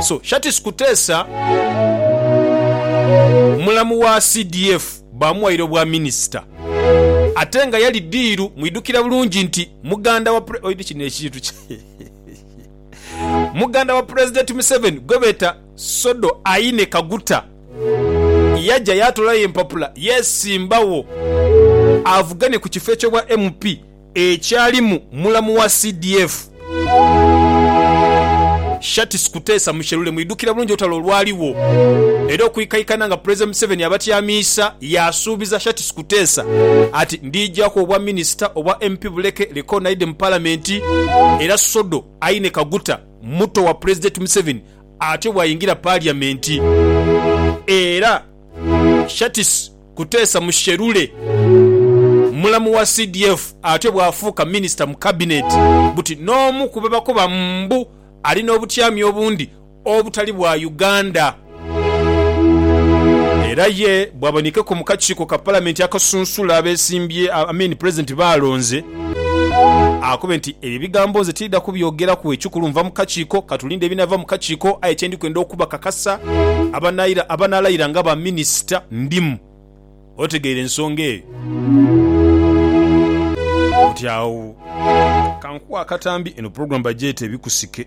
So Shartis Kutesa mulamu wa CDF baamughaire obwa minisita ate nga yali ddiiru. Mwidhukira bulungi nti muganda wa muganda wa Pulezidenti Museveni gwe beeta Sodo Aine Kaguta yaja yaatoolayo empapula yeesimbagho avugane ku kifo eky'obwa MP. ekyalimu mulamu wa CDF, Shartis Kuteesa Musherure mwidhukira bulungi olutalo olwaligho era okwikaikana nga Pulezidenti Museveni abatyamiisa yaasuubiza Shartis Kuteesa ati Ndiijaku obwa Minisita obwa MP buleke recognide mu Palamenti era Sodo Aine Kaguta muto wa Pulezidenti Museveni atyo bwayingira Paliyamenti era Shartis Kuteesa Musherure, mulamu wa CDF atyo bw'afuuka minisita mu kabineti buti n'omu ku bebakoba mbu ali n'obutyami obundi obutali bwa Uganda. Era ye bw'abonekeku mu kakiiko ka palamenti akasunsula abesimbye, I mean pulezidenti b'alonze. Akobe nti, Ebyo ebigambo nze tidha kubyogeraku ekikulu nva mu kakiiko, ka tulinde ebinaava mu kakiiko aye kye ndi kwenda okubakakasa abanaalayira nga baminisita ndimu. Otegeire ensonga eyo? Oti agho. Kankuwe akatambi, eno pulogulaamu bagyeta Ebikusike.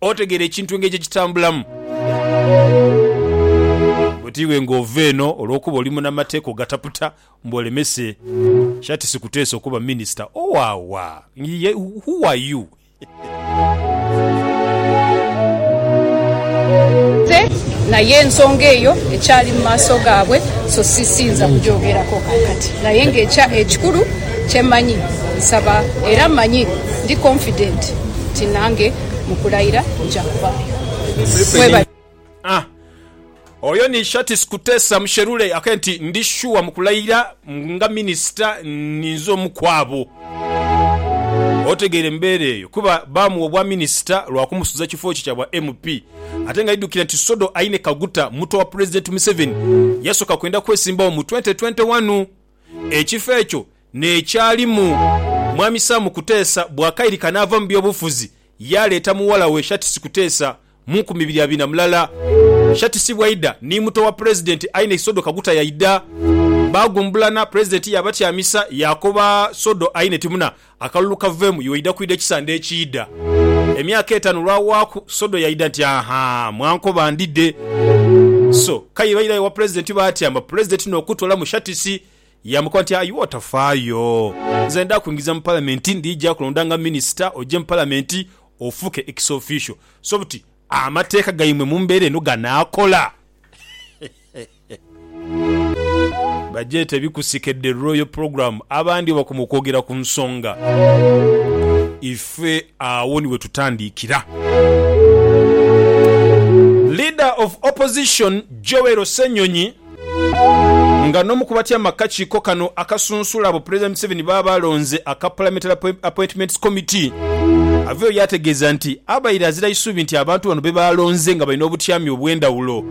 Otegeera ekintu engeri gye kitambulamu? Buti iwe ng'ova eno olw'okuba oli munamateeka ogataputa mbu olemese sha tisikuteesa okuba minisita owawa? Ng'ye who are you? Ate naye ensonga eyo ekyali mu maaso gaabwe, so si siyinza kugyogerako kaakati. Naye ng'ekya ekikulu kye mmanyi, nsaba era mmanyi ndi confident nti nange mu kulayira nja kuvaayo. A Oyo ni Shartis Kutesa Musherure ake nti, Ndi shuwa mu kulayira nga minisita ninze omu ku abo. Otegeera embeera eyo kuba baamuwa obwaminisita lwa kumusuza kifo kye kya bwa MP ate ng'aidhukira nti Sodo Aine Kaguta, muto wa Pulezidenti Museveni, yasooka kwenda kwesimbawo mu twenty twenty wanu. Ekifo ekyo n'ekyalimu Mwami Sam Kuteesa bw'akairika n'ava mu by'obufuzi yaaleeta mughala we Shatisi Kuteesa mu nkumi ibiri abiri na mulala. Shatisi bwaidha ni muto wa Pulezidenti aye ni Sodo Kaguta yaidha. Baagumbulana, Pulezidenti yaabatyamisa yaakoba Sodo aye ni timuna Akalulu kaveemu, iwe oidha kwidha ekisande ekiidha. Emyaka etaanu olwawaaku, Sodo yaidha nti, Aha! Mwankoba ndidhe. So, k'aye bairayo ewa Pulezidenti baatya, mba Pulezidenti n'okutoola mu shatisi, yaamukoba nti, Aye otafaayo. Nze ndidha kwingiza mu Palamenti, ndija kulonda nga Minisita, oje mu Palamenti ofuuke ex officio. So buti amateeka gaimwe mu mbeera eno ganaakola? Bagyeta ebikusikedde, Royal Program, abandi bwebakoma okwogera ku nsonga ife agho ni wetutandiikira. Leader of Opposition Joel Ssenyonyi nga n'omu ku batyaime akakiiko kano akasunsula abo Pulezidenti Museveni b'aba alonze aka Parliamentary Appointments Committee aveeyo yaategeeza nti abaire azira isubi nti abantu bano bebaalonze nga balina obutyami obw'endhawulo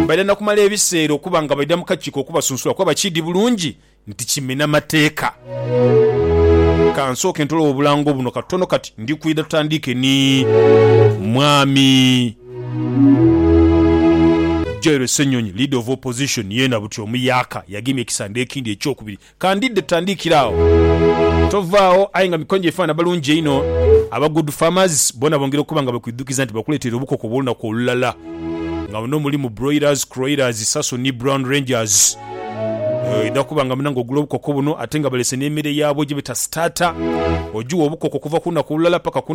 Baidha na kumala ebiseera okuba nga baidha mu kakiiko okubasunsula kuba bakiidhi bulungi nti kimena mateeka. Ka nsooke ntolewo obulango buno katono kati ndi kwidha tutandiike ni Mwami Joel Ssenyonyi, Leader of Opposition, yeena buti omuyaka yagemye ekisande ekindi ekyokubiri Ka ndidde tutandiikire agho. Tovaagho aye nga mikono gyaife abaana balungi einho. Aba Good Farmers boona bongera okuba nga bakwidhukiza nti bakuleeteire obukoko obw'olunaku olulala nga muno mulimu Broilers, Croilers, Saso ni Brown Rangers. Oidha kuba nga munange ogula obukoko buno ate nga balese n'emere yaabwo gye beta starter. Ogiwa obukoko okuva ku lunaku olulala paka ku.